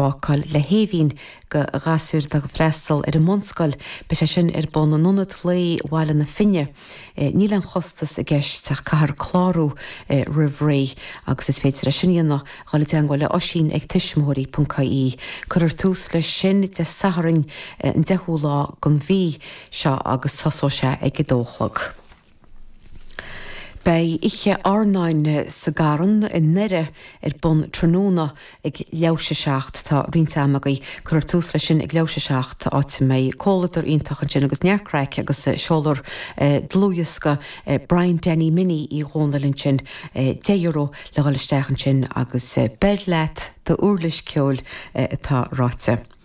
bácáil le hAoibhinn do ghasúir atá ag freastal ar an mbunscoil, beidh sé sin ar bun in Ionad Lae Bhaile na Finne. Níl aon chostas i gceist ach caithfear clárú roimh ré agus is féidir é sin a dhéanamh trí dhul i dteangmháil le hOisín ag tuismitheoirí.ie. Cuirfear tús leis sin Dé Sathairn an 10ú lá den mhí seo agus tosóidh sé ag a dó a chlog. Beidh oíche airneáin sa gCarn i nDoire ar bun tráthnóna ag leathuair tar éis a 7. Tá roinnt ama agaibh. Cuirfear tús leis sin ag leathuair tar éis a 7, áit a mbeidh comhluadar iontach ansin agus neart craic agus seoladh dlúthdhiosca Brian Danny Minnie Uí Dhomhnaill ansin. €10 le dhul isteach ansin agus beir leat d'uirlis ceoil atá ráite.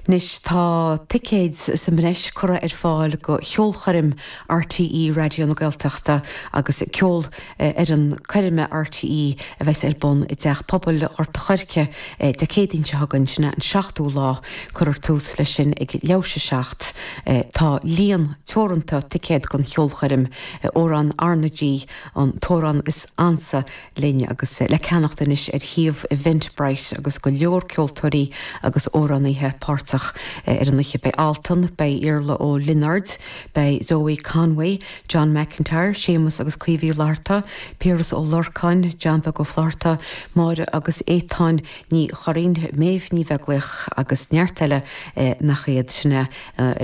Anois tá ticéid sa mbreis curtha ar fáil do cheolchoirm RTÉ Raidió na Gaeltachta agus Ceolfhoireann Coirme RTÉ a bheas ar bun i dTeach Pobail Ghort a' Choirce Dé Céadaoin seo chugainn, sin é an 7ú lá. Cuirfear tús leis sin ag leathuair tar éis a 7. Tá líon teoranta ticéad don cheolchoirm. Amhráin RnaG an t-amhrán is ansa. linn agus le ceannacht anois ar shuíomh Eventbrite agus go leor ceoltóirí agus amhránaithe páirteach ar an oíche. Beidh Altan, beidh Iarla Ó Lionáird, beidh Zoë Conway, John McIntyre, Séamus agus Caoimhe Uí Fhlatharta, Piaras Ó Lorcáin, Diamhair Ó Flatharta, Máire agus Étáin Ní Churraoin, Méabh Ní Bheaglaoich agus neart eile nach iad. Sin é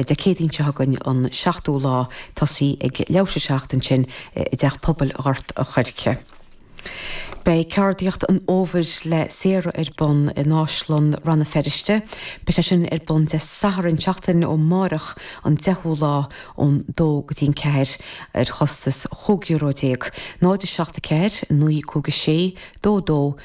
Dé Céadaoin seo chugainn an 7ú lá. Tosóidh sé ag leathuair tar éis a 7 ansin i dTeach Pobail Ghort a' Choirce. Beidh Ceardaíocht an Fhómhair le Sarah ar bun in Áislann Rann na Feirste. Beidh sé sin ar bun Dé Sathairn seachtain ó amárach an 10ú lá ón dó go dtí an ceathair ar chostas chúig euro déag. 0 7 4 9 5 6 2 2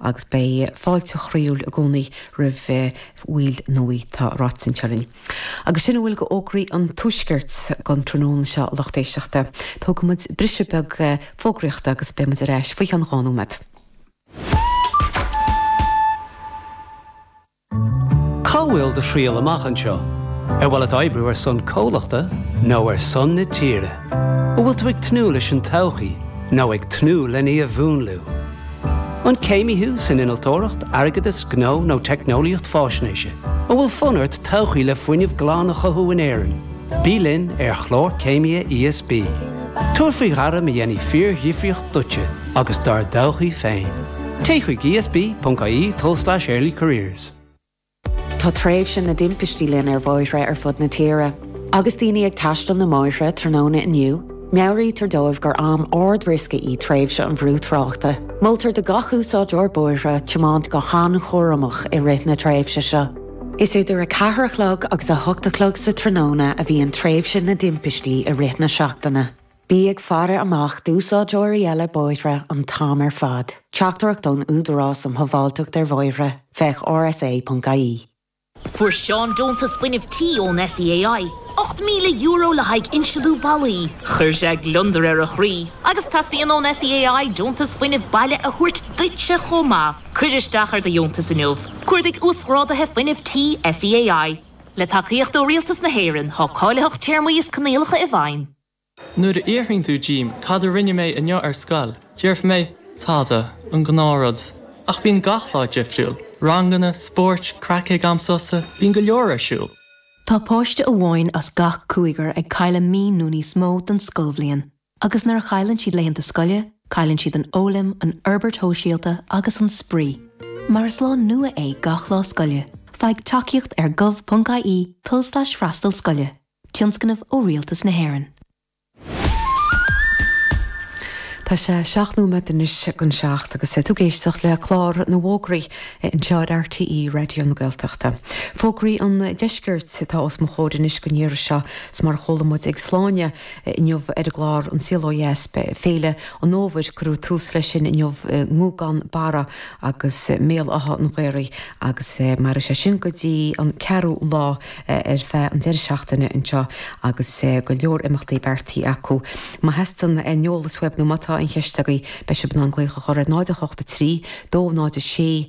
agus beidh fáilte chroíúil i gcónaí roimh bhaill nua, tá ráite anseo linn. Agus sin a bhfuil d'fhógraí an tuaiscirt don tráthnóna seo, a lucht éisteachta. Tógfaidh muid briseadh beag fógraíochta agus beidh muid ar ais faoi cheann dhá nóiméad. Cá bhfuil do thriall amach anseo? Ar mhaith leat oibriú ar son comhlachta nó ar son na tíre? An bhfuil tú ag tnúth leis an todhchaí nó ag tnúth lena mhúnlú? An céimí thú san innealtóireacht, airgeadas, gnó nó teicneolaíocht faisnéise? An bhfuil fonn ort todhchaí le fuinneamh glan a chothú in Éirinn? Bí linn ar Chlár Céimithe ESB. Tabhair faoi ghairm a dhéanfaidh fíordhifríocht duitse agus dár dtodhchaí féin. Téigh chuig esb.ie tulslais early careers. Tá tréimhse na dtimpistí linn ar bhóithre ar fud na tíre. Agus daoine ag taisteal na mbóithre tráthnóna inniu, meabhraítear dóibh gur am ardriosca í tréimhse an bhrú tráchta. Moltar do gach úsáideoir bóithre tiomáint go han-chúramach i rith na tréimhse seo. Is idir a ceathair a chlog agus a hocht a chlog sa tráthnóna a bhíonn tréimhse na dtimpistí i rith na seachtaine. Bí ag faire amach d'úsáideoirí eile bóithre an t-am ar fad. Teachtaireacht ón Údarás um Shábháilteacht ar Bhóithre, féach rsa.ie. Fuair Seán deontas fuinnimh tí ón SEAI, €8,000 le haghaidh insealú ballaí. Chuir sé gliondar ar a chroí agus teastaíonn ón SEAI deontas fuinnimh baile a thabhairt duitse chomh maith. Cuir isteach ar do dheontas inniu cuardaigh uasghrádaithe fuinnimh tí SEAI. Le tacaíocht ó Rialtas na hÉireann, tá cáilitheacht téarmaí is coinníollacha i bhfeidhm. Nuair a fhiafraíonn tú díom cad a rinne mé inniu ar scoil, déarfaidh mé, tada, an gnáthrud. Ach bíonn gach lá difriúil, ranganna, spóirt, craic ag am sosa, bíonn go leor ar siúl. Tá páiste amháin as gach cúigear ag cailleadh mí nó níos mó den scoilbhliain. Agus nuair a chailleann siad laethanta scoile, cailleann siad an fhoghlaim, an fhorbairt shóisialta agus an spraoi. Mar is lá nua é gach lá scoile, faigh tacaíocht ar gov.ie, tulslais freastal scoile, tionscnamh ó Rialtas na hÉireann. Tá sé seacht nóiméad anois go an seacht agus tú ag éisteacht le clár na bhfógraí anseo ar RTÉ Raidió na Gaeltachta. Fógraí an deiscirt atá os mo chomhair anois don iarraidh seo is mar a chuala muid ag Sláine, Inniu ar an gclár An Saol Ó Dheas, Féile an Fhómhair, cuireadh tús leis sin inniu i nGúgán Barra agus i mBéal Átha an Ghaorthaidh agus mairfidh sé sin go dtí an 4ú lá ar feadh an deireadh seachtaine anseo agus go leor imeachtaí beartaithe acu. Má theastaíonn aon eolas uaibh nó má tá aon cheist agaibh, beidh sibh in ann glaoch a chur ar 0 8 3, 2 0 6,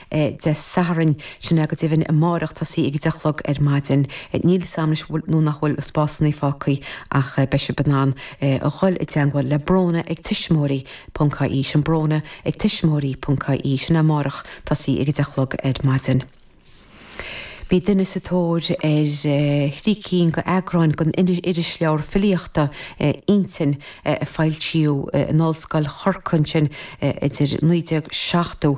Dé Sathairn. Sin é go deimhin amáireach, tá sí ag a deich a chlog ar maidin. Níl 'fhios a'm leis an bhfuil nó nach bhfuil spásannaí fágthaí ach beidh sibh in ann a dhul i dteangmháil le Bróna ag Tuismitheoirí ponc IE, sin Bróna ag Tuismitheoirí ponc IE, sin é amáireach, tá sí ag a deich a chlog ar maidin. Bhí duine sa tóir ar thrí cinn de eagráin den irisleabhar filíochta, Innti, a foilsíodh in Ollscoil Chorcaí ansin idir 1970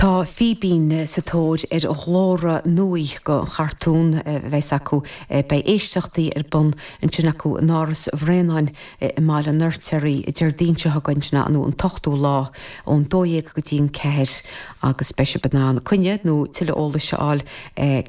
Tá Fíbín sa tóir ar ghlórtha nua do chartún a bheidhs acu. Beidh éisteachtaí ar bun ansin acu in Áras Bhraonáin i mBaile an Fheirtéaraigh Déardaoin seo chugainn, sin an an t-ochtú lá, ón dó dhéag go dtí an ceathair agus beidh sibh in ann coinne nó tuilleadh eolais a fháil ar.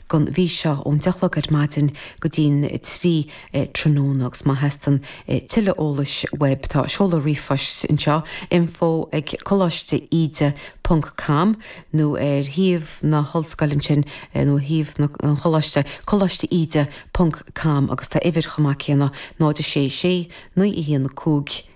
don mhí seo ón deich a chlog ar maidin go dtí an trí tráthnóna agus má theastaíonn tuilleadh eolais web tá seoladh ríomhphoist anseo, info ag coláiste íde ponc com nó ar shuíomh na hollscoile ansin nó ar shuíomh an choláiste, coláiste íde ponc com agus tá uimhir chomh maith céanna, 0 6 6, 9 1 5.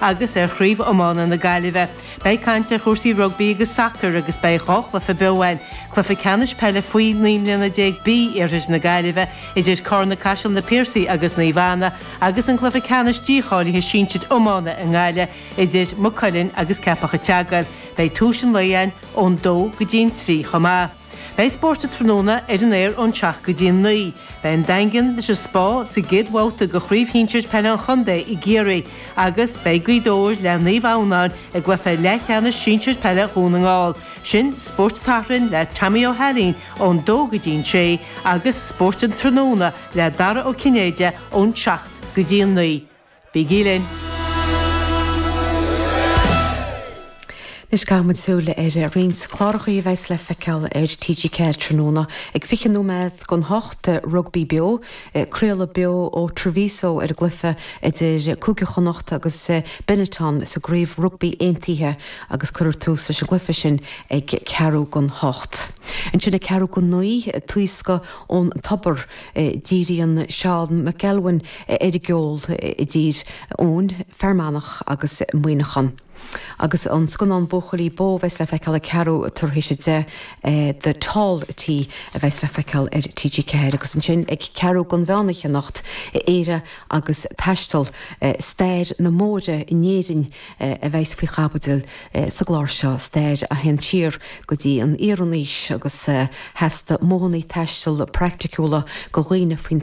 agus ar Chraobh Iomána na Gaillimhe. Beidh caint ar chúrsaí rugbaí agus sacair agus beidh dhá chluiche beo ann, cluiche ceannais peile faoi naoi mbliana déag B iarthair na Gaillimhe idir Carna Caiseal, Na Piarsaigh agus Naomh Anna agus an cluiche ceannais dícháilithe sinsir iomána i nGaillimh idir Maigh Cuilinn agus Ceapach a' tSeagail. Beidh Tús an Lae ann ón dó go dtí an trí chomh maith. Beidh spórt an tráthnóna ar an aer ón seacht go dtí a naoi. Beidh an Daingean leis an Spá sa gcéad bhabhta de Chraobh Shinsir Peile an Chontae i gCiarraí agus beidh Gaoth Dobhair le Naomh Adhamhnáin i gcluiche leathcheannais sinsir peile Dhún na nGall. Sin Spórt an tSathairn le Tomaí Ó hAilín ón dó go dtí an sé agus Spórt an Tráthnóna le Dara Ó Cinnéide ón seacht go dtí a naoi. Bígí linn! Anois caithfimid súil ar roinnt cláracha a bheas le feiceáil ar TG4 tráthnóna. Ag 20 nóiméad go 8, Rugbaí Beo, craoladh beo ó Treviso ar an gcluiche idir Cúige Chonnacht agus Benetton sa gCraobh Rugbaí Aontaithe agus cuirfear tús leis an gcluiche sin ag ceathrú go n-ocht. Ansin ag ceathrú go naoi, Taoscadh ón Tobar. Díríonn Seán McElwain ar an gceol i dTír Eoghain, Fear Manach agus Muineachán. Agus an scannán Buachaillí Bó a bheas le feiceáil ag ceathrú tar éis a deich, The Tall T a bheas le feiceáil ar TG4 agus ansin ag ceathrú go mheán oíche anocht, Éire agus Taisteal, stair na mbóithre in Éirinn a bheas faoi chaibidil Sa gclár seo stair a théann siar go dtí an Iarannaois agus theastaigh modhanna taistil praiticiúla go dhaoine faoin